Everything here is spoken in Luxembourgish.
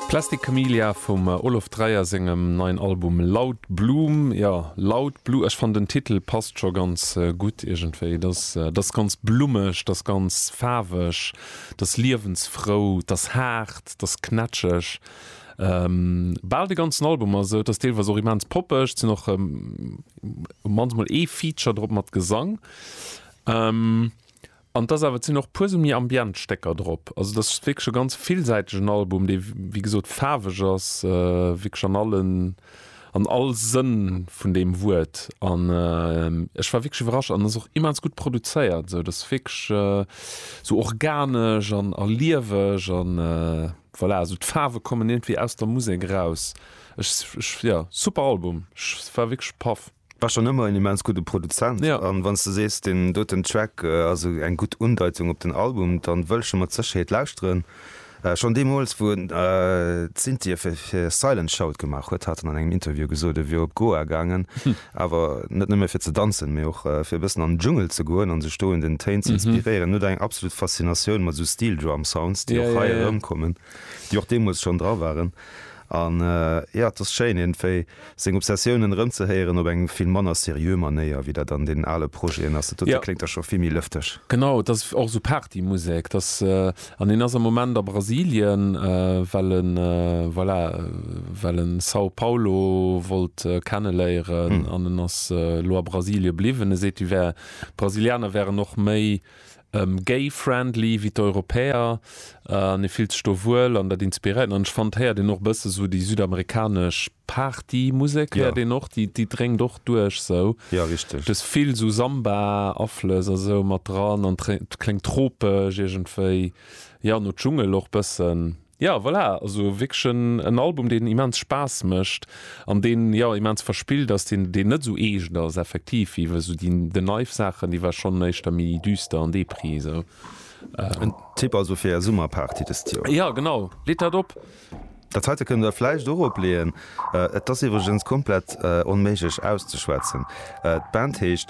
Plastic Camellia vum Olof Dreyer sengem neien Album Loud Bloom. Jo, Loud Blue, ech fannen den Titel passt scho ganz gutt iergendwéi. Dat ass ganz blummeg, dat ass ganz faarweg, dat ass liewensfrou, dat ass haart, dat ass knätscheg. Bal de ganzen Album ass esou, et ass deelweis och immens poppeg, et sinn och manchmol ee Feature drop mat Gesang. An et ass awer, et sinn och e puer esou méi ambient Stécker drop. Also et ass wierklech e ganz villsäitegen Album, dee wéi gesot faarweg ass, wierklech an allen, an all Sënn vun deem Wuert. An ech war wierklech iwwerrascht. An ass och immens gutt produzéiert esou. Et ass wierklech esou organesch an a lieweg an voilà. Esou d'Faarwe kommen iergendwéi aus der Musek eraus. Ech, ech, jo, super Album. Ech war wierklech paff. War schon ëmmer en immens gudde Produzent ja. an wann s de sees den doten Track ass eng gutt Undeitung op den Album, dann wëll ech e mat Sécherheet lauschteren. Schon deemools wou en d'Synthie fir Silent Shout gemaach huet hat en an engem Interview gesot e wier op Goa gaangen, awer net nëmme fir ze danzen, mee och fir e bëssen an den Dschungel ze goen an sech do un den Téin ze inspiréieren. En huet eng absolut Faszinatioun mat esou Steel Drum Sounds, déi och hei erëmkommen. déi och deemools schonn dra waren an jo et ass schéin iergendwéi seng Obsessiounen erëmzehéieren op eng vill manner seriö Manéier wéi dat an deenen ale Projeten ass. Dat dote kléngt da scho vill méi lëfteg. Genau, et ass och esou Partymusek. Et ass, an en ass am Moment a Brasilien, well e voilà, well e São Paulo wollt kenneléieren an en ass elo a Brasilie bliwwen. E seet, d'Brasilianer wären och méi gay friendly wéi d'Europäer an ee fillt sech do wuel an dat inspiréiert en an ech fand héiert een och e bësse esou déi südamerikanesch Party Musek héiert een och, déi dréngt och duerch esou, dës vill esou Samba Aflëss a sou mat dran an kléngt tropesch iergendwéi, jo no Dschungel och bëssen. Jo voilà, also wierklech en en Album deen immens Spaass mécht an deen jo immens verspillt ass, deen deen net esou eescht ass effektiv wéi esou déi den Neiw Saachen, déi war schonn éischter méi düster an Depri esou. En Tipp also fir är Summerparty dëst Joer? Jo genau, leet dat op! Dat heite kënnt der vläicht och opleeën. Et ass iwwregens komplett onméiglech auszeschwätzen. D'Band heescht.